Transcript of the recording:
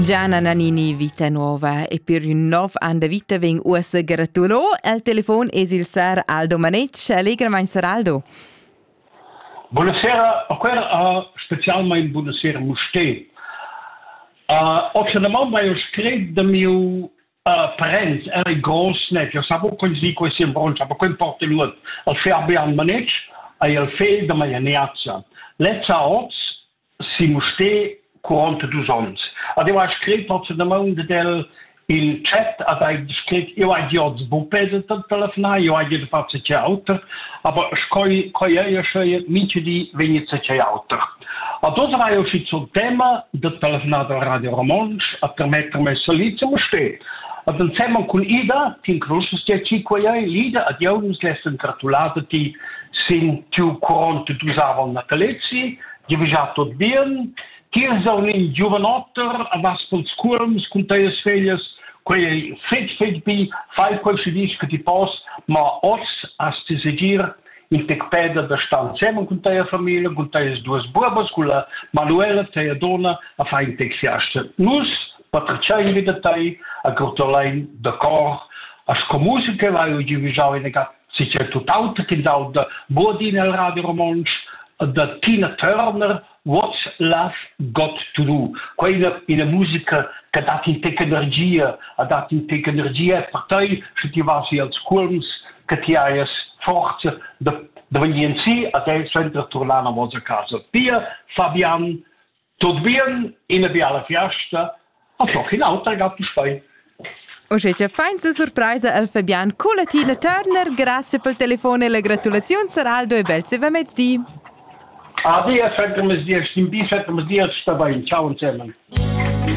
Gianna Nannini vita nuova e per un nov an da vita veng uossa gratulo. Al telefon es il sar Aldo Manetsch. Allegramain, sar Aldo. Buonasera, quer uh, specialmein buonasera Muste. Uh, Optionalment mai scrit de mio uh, parents era grossnet, io savo quel zi quel simbronch, aber quel porte lut al ferbe an Manetsch, ai al fel de mia neazia. Lezza oz si Mustér cuort dus onns. Ad eu hai scrit nozzenamaing dad el il chat, ad hai scrit, eu hai dit oz bupe da telefonar, eu hai dit far ce auter, aber sch'eu quai eir sche mincha di vegnit ce auter. A dos aveva eu schizo il tema da telefonar da Radio Romontsch a permettermi salì zu Mustér. Ad ensemen cun Ida, tin crusas ti ci quai ei, l'Ida ad eu nus l'hest ingratulata ti sin tiu cuont dus aval natalezi, giavüschà tuot bien. Tils ho ün giuvanotter a vas culs cuolms cun teis feglias, quei ei fetg fetg bi, fai quel schi disch che ti pos, ma oz has ti segir il tec peda da star insem cun teia familia, cun teis duas buobas, cun la Manuela, teia donna, a fai in tec fiasta. Nus patriciai vi da tei, a gratulein da cor, a sco musica vai giuvijau in si c'è tutt'aut ch'ins auda buodi nel radio romontsch da Tina Turner What's Love Got to Do quei ina, ina musica che dat in tec energia a dat in tec energia e per tei sche ti vas als culms che ti hai forza da da vegnir si a te senza turnar a vosa casa. Pia Fabian Tut bien, ina biala fiasta, a toch in auter Gattenstein. Uschè cha fainsa surpraisa al Fabian Culatina Turner, grazie pel telefon e la gratulaziun Saraldo e bel seva mezdi. Adi, e fetg mezdi, stim bi, fetg mezdi, sta bain, ciao insieme.